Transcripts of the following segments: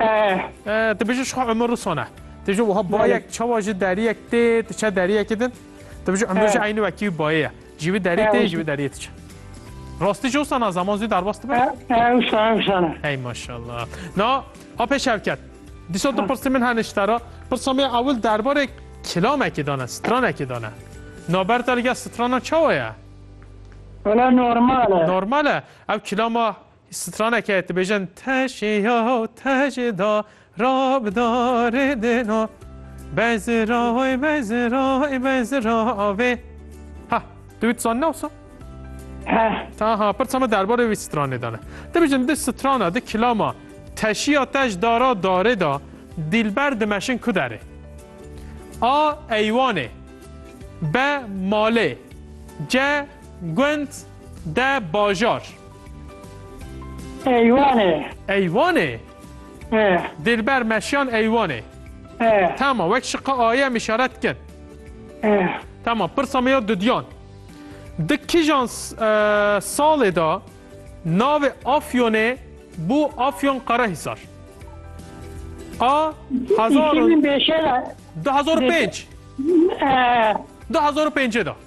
Eh. Tu biji şixwe Ömür Rusone. Tu ji wiha bayek çawa ji deriyek tê tu çe deriyekê din. Tu biji Ömür ji aynî wekî wî bayê ye. Ji wî deriyê tê ji wî deriyê tu çe. Rastî ji wisa na zaman zî derbas dibe? Ewsa ewsa ne. Hey maşallah. Na apê şevket. Dîsa tu pirsî min hene ji te re. Pirsa me ewil derbarê kilamekê dane, stranekê dane. Naber te li gel strana çawa ye? Wala normal e. Normal e. Ev kilama Straneke dibêjin teşê ya tecê da rab da rê dêna bezira oy bezira oy bezira avê. Ha, tu wî dizanî nawsa? Heh. Ta ha, pirsa me derbarê wî stranê dane. Dibêjin di strana, di kilama teşiya tej dara darê da dîlber dimeşin ku derê. A eywanê. B malê. C gund De bajar. Eywanê. Eywanê? E. Dilber meşiyan eywanê. E. Tamam, wek şiqa aye em işaret kir. E. Tamam, pirsa me ya dudiyan. Di kijan e, salê da navê Afyonê bû Afyon Qarahisar? A. Hezar û- 2005'e de. 2005. E. 2005'e da.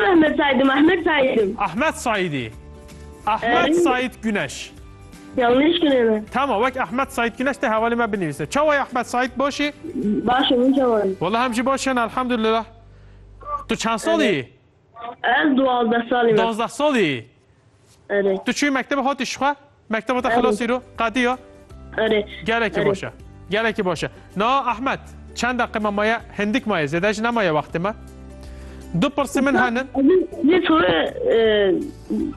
Ahmed Said im Ahmed Said im. Ahmed Saidî. Ahmed Said Güneş. Yanlış günemi. Tamam wek Ahmed Said Güneş te hevalê me binivîse. Çawa ye Ahmed Said başî? Baş im çawa. Wala hem jî baş in elhamdülillah. Tu çend salî? Ez duwazdeh salî me. Duwazdeh salî. Tu çûyî mektebe hatî şixwe? Mekteba te xilas îro qediya? Erê. Gelekî baş e. Gelekî baş e. Na Ahmet, çend deqe me maye hindik maye zêde ji nemaye wextê me. Du pirsî min henin. Lê soru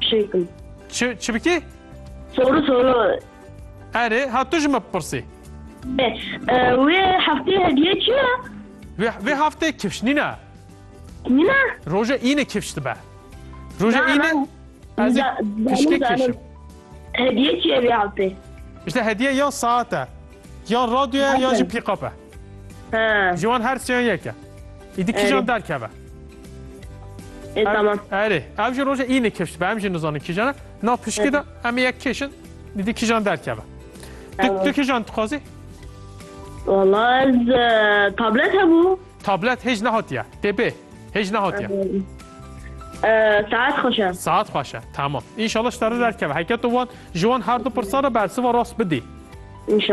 şey kim. Çi çi bikî? Soru soru. Erê, ha tu ji me bipirsî. Wê heftê hediye çi ye? Vê vê heftê kifşnîne. Mîna? Roja îne kifş dibe. Roja Na, îne na. ez ê Da- danim, pişkek danim. kişim. Hediye çiye vê altê? İşte hediye ya saat e. Yan radyoya yan jî pîkap e. Ha. Ji wan her siyan yek e. Îdî kîjan Erê. derkeve. E, Ev- tamam. Erê. Ev jî roja îne kifş dibe. Em jî nizanin kîjan e. Na pişkê de em ê yek kêşin. Dîdî kîjan derkeve. Tu, Tamam. tu kîjan dixwazî? Vallahi ez e, tablet hebû. Tablet hêj nehatiye. Tê bê. Hêj nehatiye. Saet xweş e. Saet xweş e. Tamam. Înşallah ji te re derkeve. Heke tu wan ji wan her du pirsan re bersiva rast bidî. Înşallah.